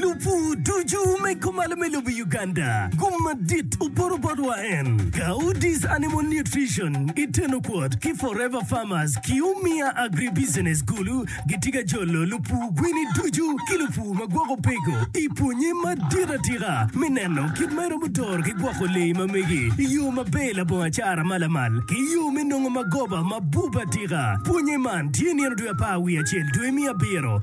Lubu ducu me kumalo me lobo Uganda, gum madit oporo bot wa en, Gaudis Animal Nutrition i Tenokwot ki Forever Farmers ki Umia Agribusiness Gulu gitye ka jolo lupu gwini ducu ki lupu ma gwoko peko i pwonye madit atika me neno kit ma iromo doro ki gwoko lee ma megi i yo maber labongo acara ma lamal ki yo me nongo magoba ma bup atika. Pwonye man tye nino dwe apar wiye acel dwe miya abiro.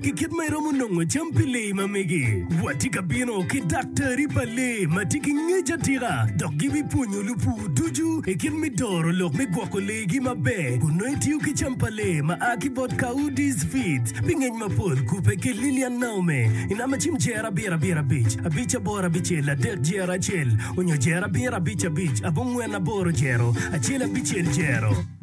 ki kit ma iromo nongo cam pi lee ma megi. Watye ka bino ki daktari pa lee ma tye ki ngec atika dok gibipwonyo lupur ducu i kit me doro lok me gwoko leegi maber kun nongo itiyo ki cam pa lee ma a ki bot Coudis Feeds pi ngec mapol. Kubbe ki Lillian Naome i namba cim jero abiro abiro abic abic aboro abicel adek jero acel onyo jero abiro abic abic abongwen aboro jero acel abicel jero.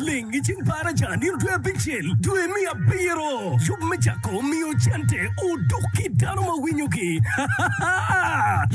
Ling i ceng para ca nino dwe abicel dwe me abiro yub me cako miyo cente oduk ki dano ma winyo gi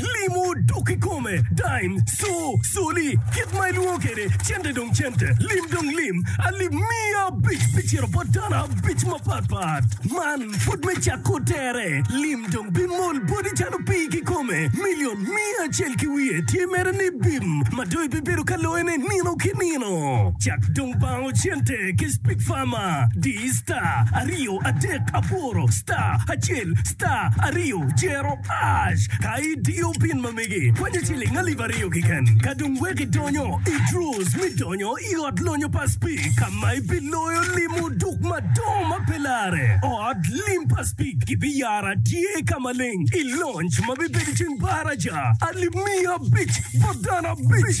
limo oduk i kome dime so soli kit ma ilwongo kede cente dong cente lim dong lim alip miya abic bi cito bot dano abic ma pat pat man pud me cako tere lim dong bi mol bodi calo pii ki kome million miya acel ki wiye tye mere ni bim ma dong ibibedo ka loyo ne nino ki nino Meno cak dong bango cente ki speak farmer diyi star aryo adek aboro star acel star aryo jero ash ka idiyo pin ma megi kwanyo ciling alip aryo kiken ka dong wek idonyo i draws mi donyo i ot lonyo pa speak ka ma ibiloyo limo duk madongo ma pe lare ot lim pa speak gibi yara tye ka maleng i lonc ma bibedo ceng baraja alip miya abic bot dano abic.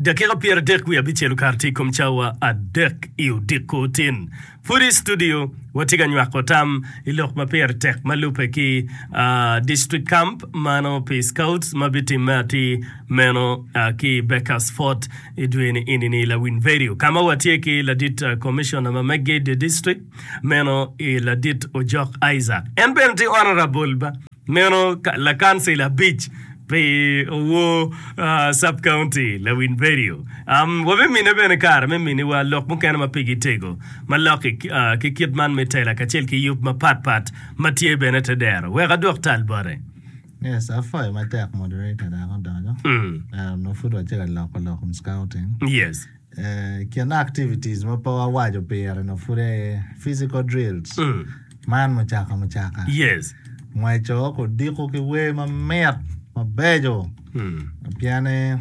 Dakika pyeradek wiye abicel okato tye i kom cawa adek i odiko tin. Pud i studio, watye ka nywako tam i lok ma pire tek ma lubbe ki District Camp mano pi Scouts ma bitimme atir meno ki i Baker's Fort i dwe ni eni ni i La Winverio, ka ma watye ki ladit Commissioner ma megge i dye district meno i ladit Ojok Isaac. En bene tye Honourable. Meno lakancil abic pi owor Sub-County Lawin Berio. Wabimine bene kare me miniwa lok mukene ma pigi tego ma lok ki kit man me tela kacel ki yub mapat pat ma tye bene te dero. Wek adwok tal bote. Yes, apwoyo matek moderator dok odonyo. Ento nongo pud watye ka loko lok in scouting. Yes. I kine activities ma pe wawaco pire nyo pud aye physical drills man mucaka mucaka ngweco kudiko ki wer mamit mabeco pien ni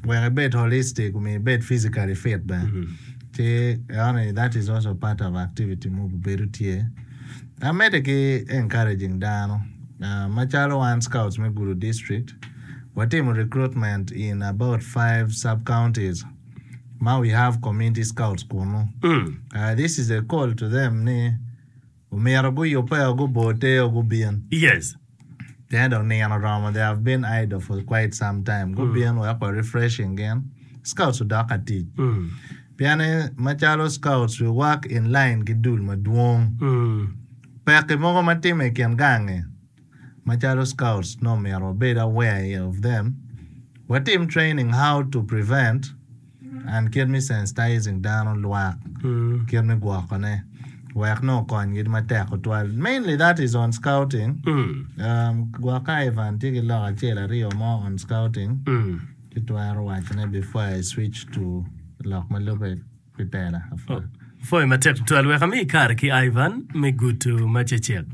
wek ibed holistic omyero ibed physically fit bene ci enoni that is also part of activity mogo bedo tye en mede ki encouraging dano macalo wan scouts me Gulu district. watimo recruitment in about five sub counties ma we have community scouts kunu. Uh, this is a call to them ni omyero guyubbe o gubor te o gubin. Yes. Pien dong nino oromo, they have been idle for quite some time. Gubin wek wa refreshing gin. Scouts odok ka tic. Mm. Pien ni macalo scouts we work in line ki dul madwong. Mm. Pekki mogo ma timme i kin gangi. Macalo scouts nongo myero wabed aware of them, watim training how to prevent and kit me sensitizing dano lwak kit me gwoko ne wek nongo kony gi matek tutwal mainly that is on scouting gwokka Ivan tye ki lok acel aryo mo on scouting ci twero wacone before I switch to lok ma lube. pi pela apwa. Pwoyo matek tutwal. Wek ami kare ki Ivan me gutu ma cecek.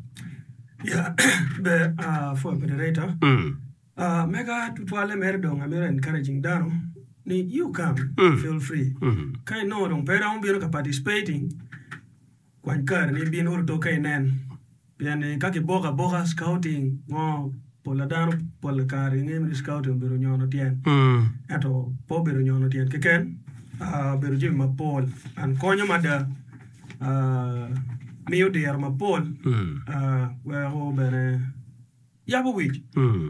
Ya, ber ah, pwoyo moderator. Mm. Ah, mega tutwalle mere dong amito encouraging dano ni you come, feel free. Ka inongo dong pe iromo bino ka participating, Kwany kareni ibin ot oto ka inen, pien ni ka kiboko aboka, scouting, ngo pola dano pola kare gingeyo ni scouting obedo nyono tyen, ento pe obedo nyono tyen keken, obedo jami mapol and konyo mada, miyo diro mapol weko bene. Yabo wic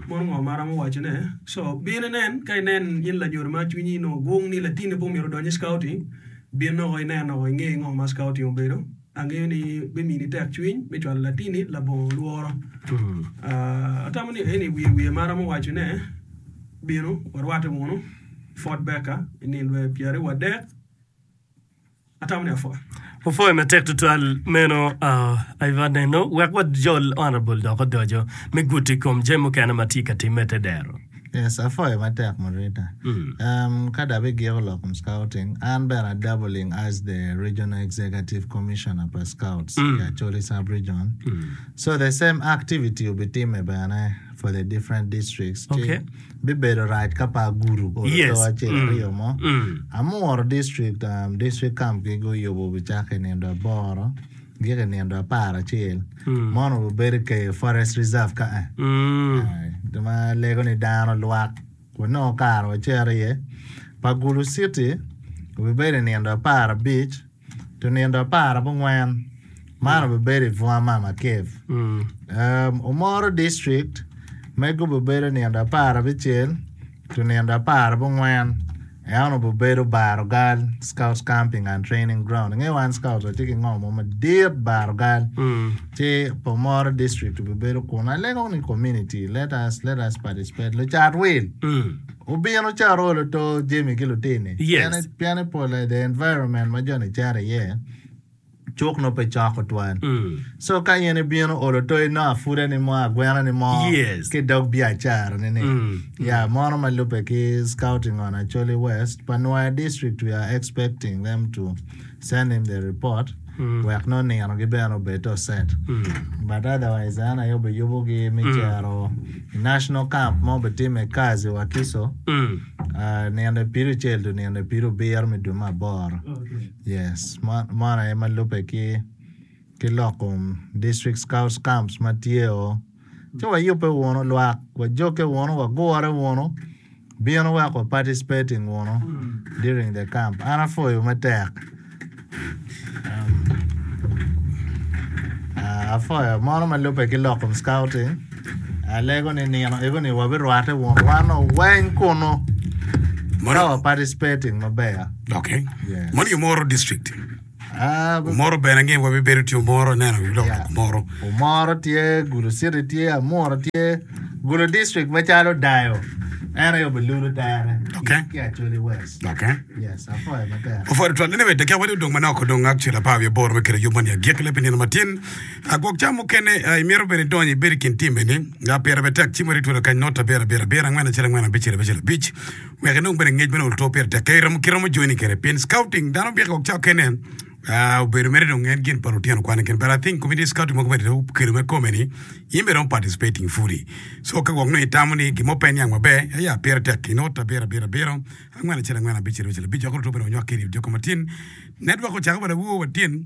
mono ngo ma aromo waco ne so bin inen ka inen in lanyodo ma cwinyi nongo gung ni latini pe omyero odony i scouting bin nongo inen nongo inge ngo ma scouting obedo angeyo ni bimini tek cwiny me cwalo latini labongo lworo atamo ni eni wiye wiye ma aromo waco ne binu warwate wunu Fort Baker i nindwe pyeraryo wadek. Wapwoyo matek tutwal meno aye bot nino wek wajol honorable dok odoco me gudo i kom jami mukene ma tye ka timme te dero. Yes, apwoyo matek Murita. Em, ka dok abigiko lok kom Scouting, an bene a dabbling as the Regional Executive Commissioner pa Scouts i Acholi Sub-Region. So the same activity obitimme bene for the different districts. Ci Okay. Bibedo rac ka pe agudo bot oto acel aryo mo. Amuro district district camp gi guyubo bicako i nindo aboro giko i nindo apar acel. Mono wabedo i Keyo Forest Reserve ka eh. Ka ma lego ni dano lwak wanongo kare wacito iye. Pa Gulu City wabibedo i nindo apar abic. Tunindo apar abongwen man obibedo i bunga Mama Cave. Um, Omoro District me gubibedo nindo apar abicel tunindo apar abongwen en obibedo Barogal Scouts Camping and Training Ground. Inge wan Scouts watye ki ngo mo madit Barogal. Ci pa Omoro District obibedo kun alego ni community let us let us participate lucat wil. Obino ca oro luto Jimmy ki lutini pien pien epol adada environment ma joni cito iye cuk nongo pe cok tutwal so ka in ibino olo to inongo apuda ni mo agwena ni mo ki dog biacara ni ni ya mono ma lube ki scouting on Acholi west pa Nwaya district we are expecting them to Send him the report wek nongo ninogi bene obed to set but otherwise an aye obiyubo gi me cero i national camp ma obitime kazi wakiso nino pirucel to nino pirubiro me dwe me aboro yes meno aye ma lube ki ki loko District Scouts Camps ma tye o, ci wayubbe wunu lwak, wajogge wunu, wagurre wunu, bino wek wa participating wunu during the camp. An apwoyo me tek. Ah, apwoyo mono ma lubbe ki lokum scouting, alego ni nino ego ni wabirwate wunu wan o weng kunu ka wa Mono, participating maber. okay. Yes. Mono yomoro district. Omoro bene ni wabibedo tye omoro neno wi lok lok omoro. Omoro tye, Gulu City tye, Amuro tye, Gulu District macalo Dayo. En aye obilulu tere okay. ki Acholi West. Okay. Yes, apoyo maber. Apoyo tutwal nene bete kya wadi odong manok odong ak cula pa wiye boro me kere yub mani agik le pinino matin. Agwok cam mukene imiro bene donyo ibedi kin timbe ni. Nga pira betek cimo ri twelo kany nota bira bira bira ngwena cira ngwena bicira bicira bic. wek inong bene ngec bene oto pire tek kadi ki romo joining kede pien scouting dano byek wek ca okene obedo mere dong en gin pa lutino kwane kene but I think community scouting mogo bene okelo me kome ni in bene iromo participating fully so ka gwok nongo itamo ni gin mo pe niang maber aya pire tek inongo te abiro abiro abiro angwen acel angwen abic acel abic dok luto bene onywak ki i redio kamatin network ocako bene awowo wa tyen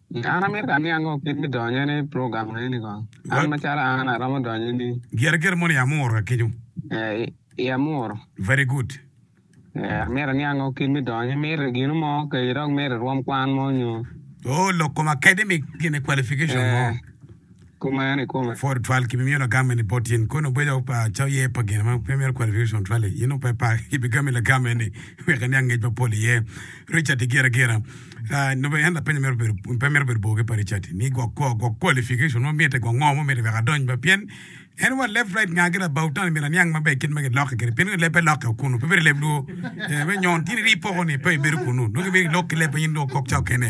Nyo an amito ka aniang kong kit me donyo ni program eni ni kong. An macalo an aromo donyo ni. Gire gire mono i Amuru ka kenyo. Eh, i Amuru. Very good. Eh, amito aniang kong kit me donyo. Imito i gino mo kec idok mito irwom kwan mo nyo. Oh, lok kom academic gine qualification mo. Eh. kumeno i kome. Ford twal ki bimiyo lagame ni bot in kono bedo pa coye pa gin ma pe mito kwalo Richard on twal-li. In ope pa ki bigami lagame ni wek iniang ngec mapol iye. Richard i gira gira nube en lapenyo mito bedo pe mito bedo bor ki pa Richard ni gwok kwo gwok qualification mo mite gwok ngo mo mite wek adony ba pien en wa left right nga ki labaw tani mito aniang maber kit ma gilokke kede pien nongo lebbe lokke wa kunu pe bedo leb luo me nyon tini rii poko ni pe ibedo kunu nongo mito ilok ki lebbe in dong okok ca okene.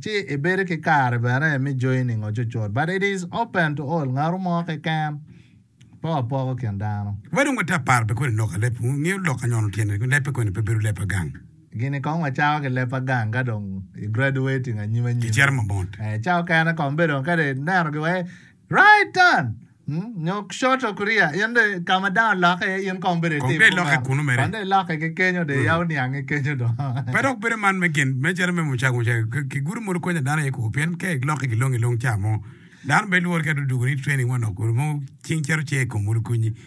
Ci ibedo ki kare bene me joyi ningo cucut. But it is open to all, ngatu mo keken pe wapoko kin dano. Wa dong water paro pi koni lok a leb, ngiyo lok a nyono tyene, kun lebbe koni pe bedo leb a gang. Gini kong wacako ki leb a gang ka dong i graduating anyim anyim. Kicito ma mot. Ca okene kong bedo kadi ineno gi wai. Right turn nyo short of rear in dong ka ma dano lokke iye in kong bedo itim kuneno. Kong dong ilokke kunu mere. Kong dong ilokke ki kenyo dong iyabo niange kenyo dong. Pe dok bedo man me gin me calo me mucaka mucaka ki gudo modo konyo dano aye koko pien ka ilokke ki long ilong ca mo dano pe lwori ka dong dugo ni training manok mogo cing cito ce i kom modo konyi.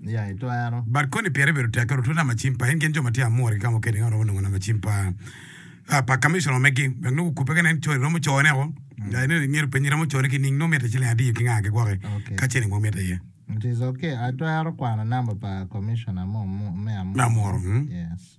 ya itwero. But koni pire bedo tek kadi otutu nama cim pa en gin jo ma tye amura ki ka mukene ka romo nongo nama cim pa ah pa Commissioner omegi wek nongo gukube ka nen code romo cone o ya ineno ingeto penye romo cone ki ning nongo mitte ciling adiyo ki nga ki gwoko Okay. ka cene nongo mitte iye It is okay. Atwero kwano number pa Commissioner mo mo me me amura? amura mm. Yes.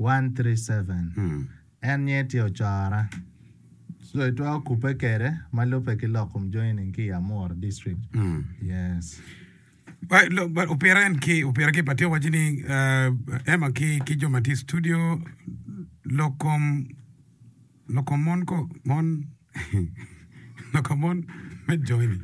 137. En nyer tye ocora. So itwero kubbe kwede ma lubbe ki lok kom joining ki i Amuru district. Yes. Opire en ki opire ki patio waci ni uh, Emma ki ki jo ma tye i studio lok kom lok kom mon ko mon lok kom mon me joining.